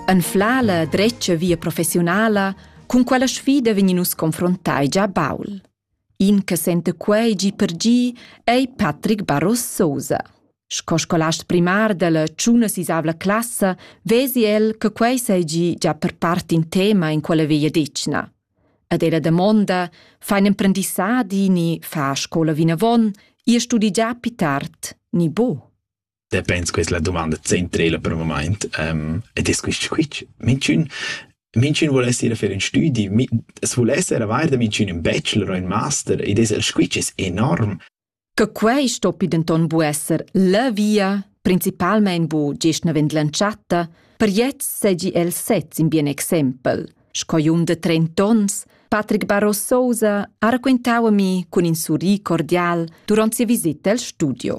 Anflar la dretga via professiunala cun quella sfida vegnin nus confrontai già baul. In che sente quei gi per gi ei Patrick Barros Sosa. Sco scolast primar della tschuna sisavla classa vesi el che quei seigi già per part in tema in quella via dicna. Ad ella damonda fein emprendissadi ni fa scola vinavon, ihr studi già più tard ni bo. Te pens questa la domanda centrela per il moment um, ed è questo squitsch. Minchun minchun vuol essere fer un studi, es vuol essere avair da minchun un bachelor o un master ed es el squitsch es enorm. Che quei stoppi denton bu esser la via, principalmein bu gest navend l'entschatta, per jetzt segi el sez in bien exempel. Sco un de 30 ons, Patrick Barros Sousa ha raquentau a mi cun in surri cordial durant sia visita al studio.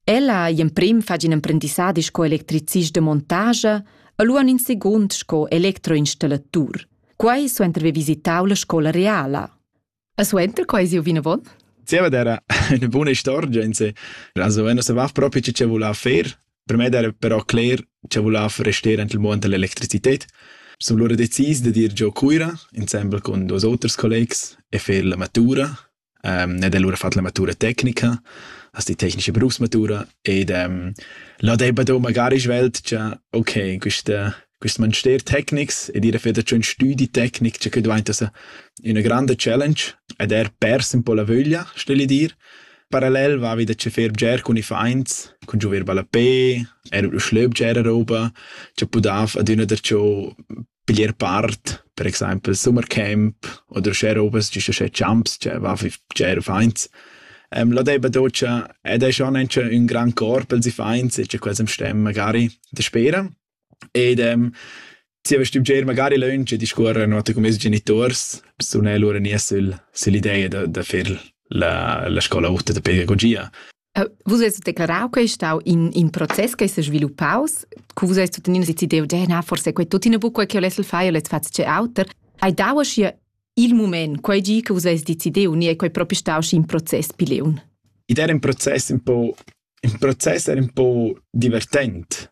Ella ei emprim fatg in emprendissadi sco electricist de montage e lu en in secund sco electroinstallatur. Quei suenter haver visitau la scola reala. E suenter quei siu vinavon? Zieva era eine buona storia in se. Also wenn se va proprio ce voleva fer, per me era però cler ce voleva restare anche il mondo dell'elettricità. Sono loro decis de dir giò Cuira, insieme con due altri colleghi, e fer la matura um, ed è lura fatg la matura tecnica, hast die technische Berufsmatura ed um, là debba da magari svelt, cioè, ok, questa quest magister tecnics ed ir a feder un studi tecnic, cioè che diventa una grande challenge ed er persi un po' la vöglia, stelle dir. Parallel va wieder zu fer ger con i feins, con giover ballapé, er lo schlöb ger roba, cioè pudaf ad üna der ciò Bler part, per exaimpel Summercamp oder uschè robas, giüst uschè champs, che va fi bger fains. La deba docia ed es schon auncha ün grand cor pels iffaints e cha quels am stem magari daspera. Ed zieva stü bger magari lönch e discuorrer note cun meis genituors, sun e lura gnì sül süll'ideja da da fer la la scola ota da pedagogia. Vus hast declarau che ei stau in, in process che s'è sviluppaus, cu vus hast tuttenina decidiu, na, forse quei tuttina buc quei che volessi fare, volessi fare tge auter. Hai dau aschia il moment, quei gi che vus hast decidiu, ni è quei proprio stau schi in process pileun? Id era in process un po', in process era un po' divertent,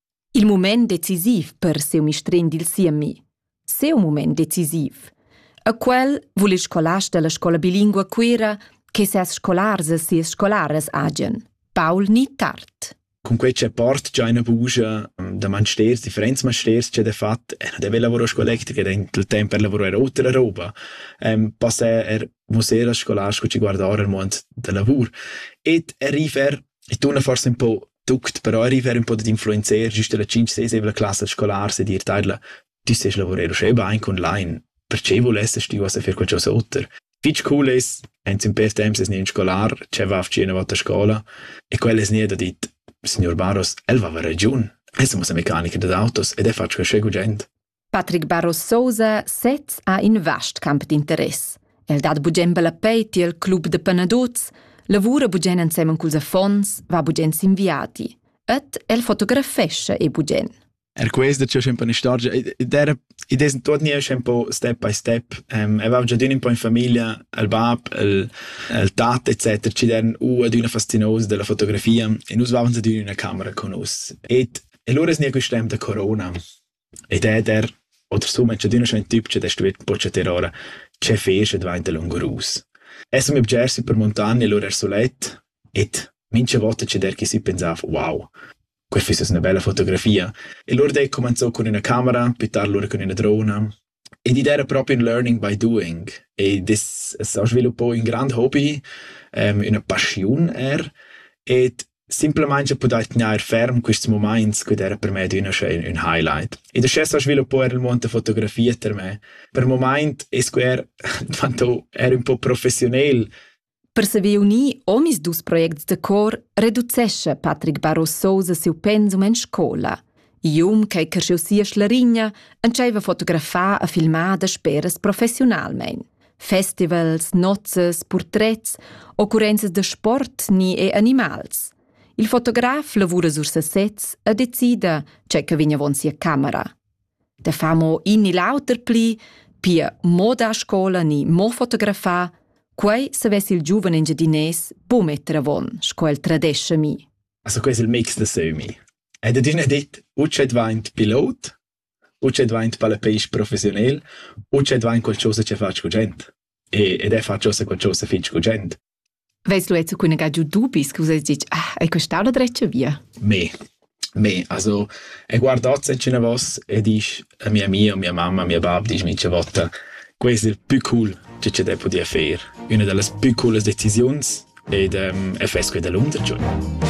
Il mument decisiv per siu mistrin dil siemi. Seu mument decisiv. A quel vul il scolast dalla scola bilingua Cuira che ses scolars e sias scolaras hagen. Paul ni tard. Cun quei che port già ina bugia da mansters, differents mansters che de fat, e de lavoro scolectica dentro il tempo per lavorare oltre la roba, ehm, passa er museo da scolars che ci guardare il mondo del lavoro. Et arriver e tu forse un po' tuct però arriver ün po dad influenzer güst alla cinc-sesevla classa scolar se dir teidla tü sest lavurer uschè bain online perché vulesses tü vas a fer qualchosa oter fich cool es ins ün pêr temps es gnü ün scolar che va a far üna volta a scola e quel es gnü da dit signor Baros, el vava ragiun. Esa mo sa mecanicher dad autos ed è fatg qualche gugent. Patrick Barros Sousa sez ha in vast camp d'interess. El dat bugen bellapei tiel club de penadots, lavura bugen ensemen culs affons, va bugen sin viadi. Et el fotografescha e bugen. Er questo c'è un po' una storia, ed idea tot ni è un po' step by step. Um, aveva già un po' in famiglia, il bab, il, il tat, eccetera, ci erano u ad una fastinosa della fotografia e noi avevamo ad una camera con us. E allora è niente questo tempo da corona. E dad er, oter sum è chadüna schon tübcha da stuer pochattar ora che fer sche dvainta lungurus. Es mi bger sü per muntagna lura er sulet ed mincha vota che der chi sü pensava «Wow, que füss üna bella fotografia». E lura d'he cumanzò cun üna camera, pü tard lura cun üna drona. Ed id era propi ün learning by doing. Ed es es stà sviluppà ün grand hobby, üna paschiun eir, ed simplamaing ho pudai tgnair ferm quists mumaints chi'd era per me adüna schi ün highlight. Ed uschè s'ha sviluppà eir il muond da fotografia ter me. Per mumaint es que eir dvanto eir ün po professiunel Per saver unir omisdus projects de cor reducescha Patrick Barros Sousa siu pensum en scola. Ium che cresceu sia schlarigna entscheiva fotografar e filmar da speras professionalmein. Festivals, nozzes, portrets, occurrenzas de sport ni e animals. Il fotograf lavura sur sesez e decida ce che vegn avon sia camera. Da far mo in ni l'auter pli, pia mo da scola ni mo fotografar, quei savess il giuven engiadinès buc metter avon, sco el tradescha mi. Also quei es il mix da sömi. Ed adina dit, utsche dvaint pilot, utsche dvaint palapeisch professionel, utsche dvaint qualchosa che faci cu gent. E, ed è faci qualchosa fitg cu gent. Veis lu jetzt cunega giu dubis che vus eis detg, ah, ei costau la dretga via? Me, me, also, e guardat se ce vos e disch a mia mia, mia mamma, mia bab, disch mi ce votta, questo è il più cool che ci deve poter fare. Una delle più coole decisioni è, um, è fresco dell'untergiorno.